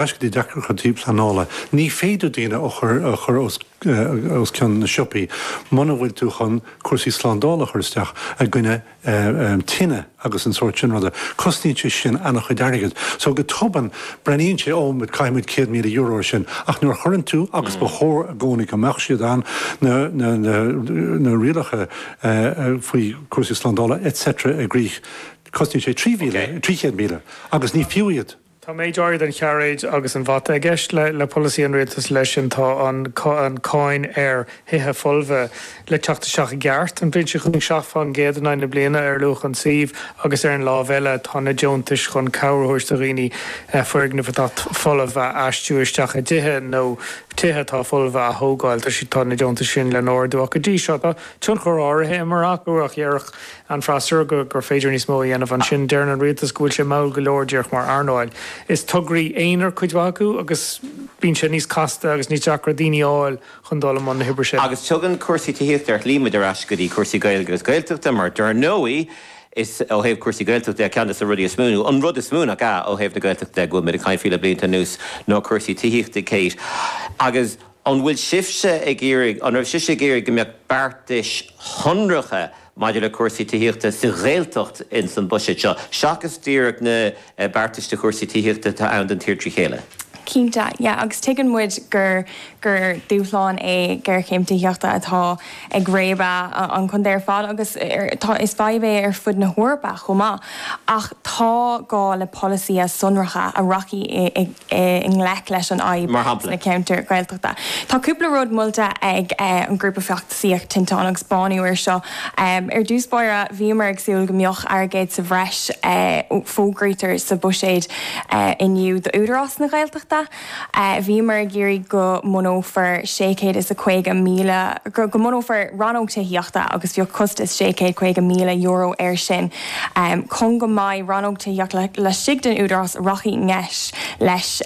Basically, deacracha tí pleanála. Ní féidir daoine a chur a chur os os cionn na siopaí muna bhfuil tú chun cúrsaí slándála a chur isteach i gcoinne eh tine agus an tsórt sin ruda. Cosnaíonn sé sin ana-chuid airgead. So go tobann breathnaíonn sé oh b'fhéidir caithfidh muid céad míle euro ar sin. Ach nuair a chuireann tú agus ba chóir i gcónaí go mbeadh siad ann na na na na rialacha eh faoi cúrsaí slándála et cetera i gcrích cosnaíonn sé trí mhíle, trí chéad míle agus ní fiú iad. Tá méid áirithe den chairéad agus an bhata i gceist le polasaí an Rialtais leis sin, tá an cáin ar thithe folmha le teacht isteach i gceart, an bhliain seo chugainn seacht fán gcéad in aghaidh na bliana ar luach an tsuímh agus ar an láimh eile tá na deontais chun cabhair a thabhairt do dhaoine foirgnimh atá folamh a aistriú isteach i dtithe nó tithe atá folmha a thógáil. Tá na deontais sin le hardú ach go dtí seo tá tionchar áirithe imeartha acu ach deireann, an freasúra gur féidir níos mó a dhéanamh. Ansin deireann an rialtas go bhfuil sé mall go leor díreach mar earnáil. Is tograí aonair cuid mhaith acu agus bíonn sé níos casta agus níos deacra daoine a fháil chun dul i mbun na hoibre sin. Agus tugann cúrsaí tithíochta ar shlí muid ar ais go dtí cúrsaí Gaeilge agus Gaeltachta mar dar ndóigh is ó thaobh cúrsaí Gaeltachta de ceann dos na rudaí is mó, nó an rud is mó nach ea, ó thaobh na Gaeltachta de go bhfuilimid ag caint faoi le blianta anuas ná cúrsaí tithíochta. Kate, Agus an bhfuil, an raibh sibhse ag iarraidh go mbeadh beartais shonracha, maidir le cúrsaí tithíochta sa Ghaeltacht ins an Buiséad seo, seachas díreach na beartais do chúrsaí tithíochta atá ann don tír trí chéile. Cinnte, yeah, agus tuigeann muid gur gur dúshlán é géarchéim tithíochta atá ag réabadh an chontae ar fad agus is fadhb é ar fud na hEorpa chomh maith ach tá gá le polasaithe sonracha a rachaidh i i ngleic leis an fhadhb ar leith atá sna ceantair Ghaeltachta. Tá cúpla rud molta ag an ghrúpa feachtasaíochta Tinteán agus Bánú air seo. Ar dtús báire, bhíomar ag súil go mbeadh airgead sa bhreis fógraithe sa bhuiséad inniu d'Údarás na Gaeltachta, bhíomar ag iarraidh go mbunófar sé chéad is caoga míle, go mbunófar rannóg tithíochta agus bhí costas sé chéad caoga míle euro air sin. Chun go mbeidh Rannóg Tithíochta laistigh den Údarás a rachaidh i ngleic leis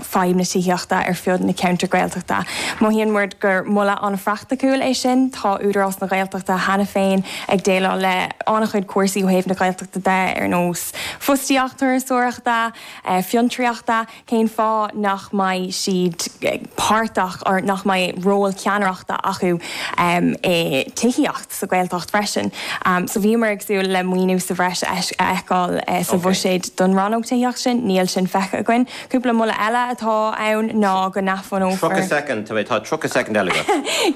fadhb na tithíochta ar fud na ceantair Gaeltachta. Mothaíonn muid gur moladh an-phraiticiúil é sin. Tá Údarás na Gaeltachta cheana féin ag déileáil le an-chuid cúrsaí ó thaobh na Gaeltachta de ar nós fostaíocht, turasóireachta, fiontraíochta. cén fáth nach mbeidh siad páirteach or nach mbeidh ról ceannaireachta acu i tithíocht sa Ghaeltacht freisin. So bhíomar ag súil le maoiniú sa bhreis a fheiceáil sa bhuiséad don rannóg tithíocht sin, níl sin feicthe againn. Cúpla moladh eile atá ann ná go. 30 soicind, tá brón orm, tá 30 soicind eile agat.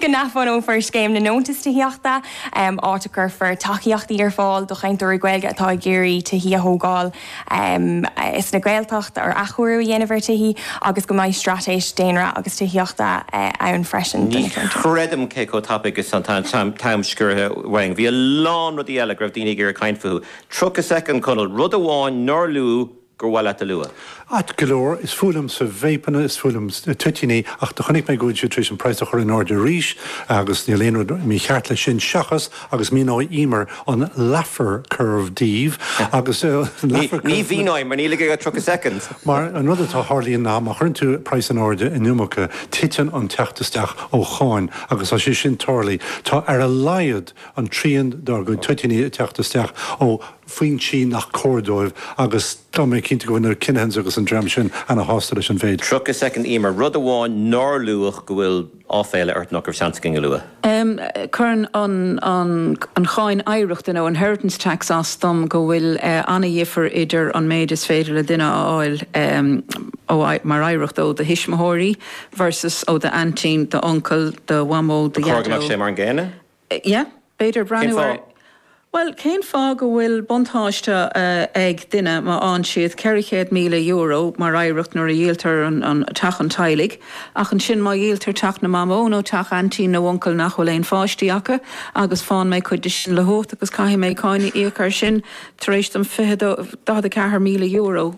Go n-athbhunófar scéim na ndeontas tithíochta, áit a gcuirfear tacaíochtaí ar fáil do chainteoirí Gaeilge atá ag iarraidh tithí a thógáil. sna Gaeltachtaí ar athchóiriú a dhéanamh ar tithí agus go mbeidh straitéis daonra agus tithíochta ann freisin do na ceantair. Ní chreidim cé chomh tapaidh is atá an t-am sciorraithe uainn. Bhí a lán rudaí eile go raibh daoine ag iarraidh caint fúthu. 30 soicind, Conall. Rud amháin nár luadh gur mhaith leat a lua? Ait go leor, is fuath liomsa vapeanna, is fuath liom toitíní, ach do chonaic mé go bhfuil siad tar éis an praghas a chur in airde arís agus níl aon rud mícheart leis sin, seachas, agus míneoidh Emer an Laffer Curve daoibh agus Laffer Curve. Ní mhíneoidh mar níl agat ach 30 soicind. Mar, an rud atá ag tarlúint ná má chuireann tú praghas in airde an iomarca, titeann an teacht isteach ó cháin agus tá sé sin tarlaithe, tá ar a laghad an trian dár gcuid toitíní ag teacht isteach ó foinsí nach cóir dóibh agus tá mé cinnte go bhfuil na Kinahans agus an dream sin ana shásta leis an mhéid. 30 soicind Emer, aon rud amháin nár luadh go bhfuil. áiféala ort nach raibh seans againn a lua. Cuireann an cháin oidhreachta nó inheritance tax as dom go bhfuil ana-dhifear idir an méid is féidir le duine a fháil mar oidhreacht ó do thuismitheoirí versus ó d'aintín, d'uncail, do mhamó, do dhaideo. Cóir go mbeadh sé mar an gcéanna? yeah, b'fhéidir breathnú ar, bhuel, cén fáth go bhfuil buntáiste ag duine má fháann siad €400,000 mar oidhreacht nuair a dhíoltar teach an teaghlaigh ach ansin má dhíoltar teach na mamó nó teach aintín nó uncail nach bhfuil aon pháistí acu agus fáann mé cuid de sin le huacht agus caithfidh mé cáin a íoc ar sin tar éis dom fiche, €44,000.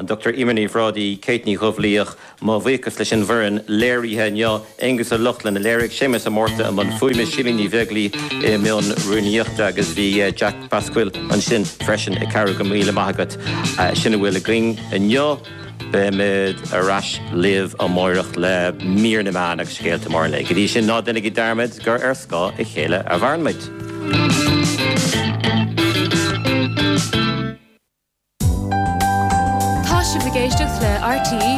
An Dr Emer Ní Bhrádaigh, Kate Ní Chonfhaola, mo bhuíochas leis an bhfoireann léirithe inniu, Aengus Ó Lochlainn a léirigh, Séamus Ó Márta i mbun fuaime, Síle Ní Bheaglaoi i mbun rúnaíochta agus bhí Jack Basquill ansin freisin ag cabhrú. Go raibh míle maith agat. Sin a bhfuil againn inniu. Beimid ar ais libh amáireach le Mír na Meán agus Scéalta Móra an Lae. Go dtí sin ná deinigí dearmad gur ar scáth a chéile a mhairimid. Tá sibh ag éisteacht le RTÉ